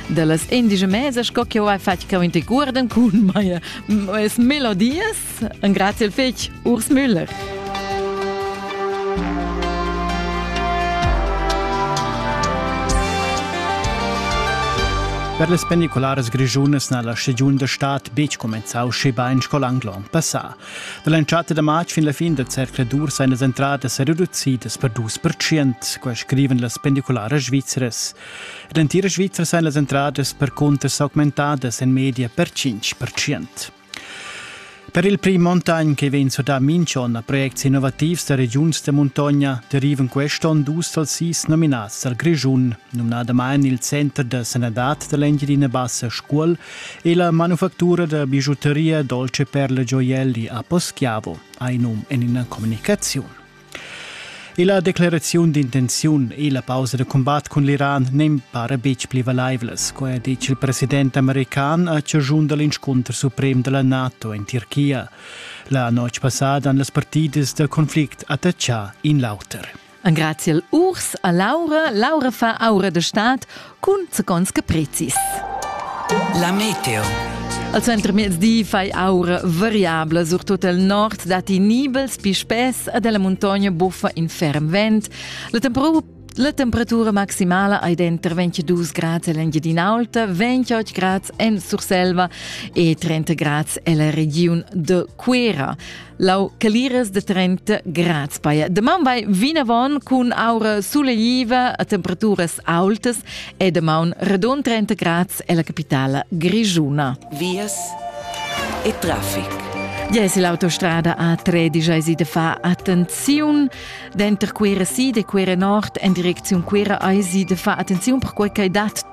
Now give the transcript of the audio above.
da las indice mese sco che ho hai fatg che inte guarden cun meie es melodias en grazie al fetg Urs Müller Per le pendicolares grigiunas na la stagiun da stad betg comenzau schebain sco l'anglon passà. Da l'entschatta da matg fin la fin del cercle d'ur seien las entradas reducidas per dus per cient, quai scriven las pendicolares svizzeres. Ed en tira Svizra san las entradas percunter s'augmentadas en media per 5%. Per il prim montagn che vegn surdà minch'onn a projects innovativs da regiuns da muntogna derivan quest'onn dus dals sis nominats dal Grischun, numnadamain il Center da sanadad da l'Engiadina Bassa Scuol e la manufactura da bigiuteria Dolce Perle Gioielli a Poschiavo, ha in num en ina communicaziun. E la decleraziun d'intenziun e la pausa da combat cun l'Iran n'en para betg pli valaivlas, co ha ditg il president american a chaschun da l'inscunter suprem da la NATO en Tirchia. La notg passada han las partidas da conflict attachà in l'auter. Engraziel urs a Laura. Laura fa aura de stat cun seconds caprezis. La meteo. Al center mezdi fai aura variabla, surtut al nord datti nibels pi spess ed la muntogna buffa in ferm vent. La temperatura La temperatura maximala ei denter 22 grads en l'Engiadin'Alta, 28 grads en Surselva e 30 grads en la regiun de Cuera. Lau Caliras de Trenta Graz paia. Deman vai vinavon cun aura suleiva a temperaturas aultas e deman redon 30 Graz e la capitala grigiuna. Vias e traffic. Yes, l'autostrada A13 si de fa attenziun denter Cuira Sid e Cuira Nord en direcziun Cuira ai si de fa attenziun per quei che dat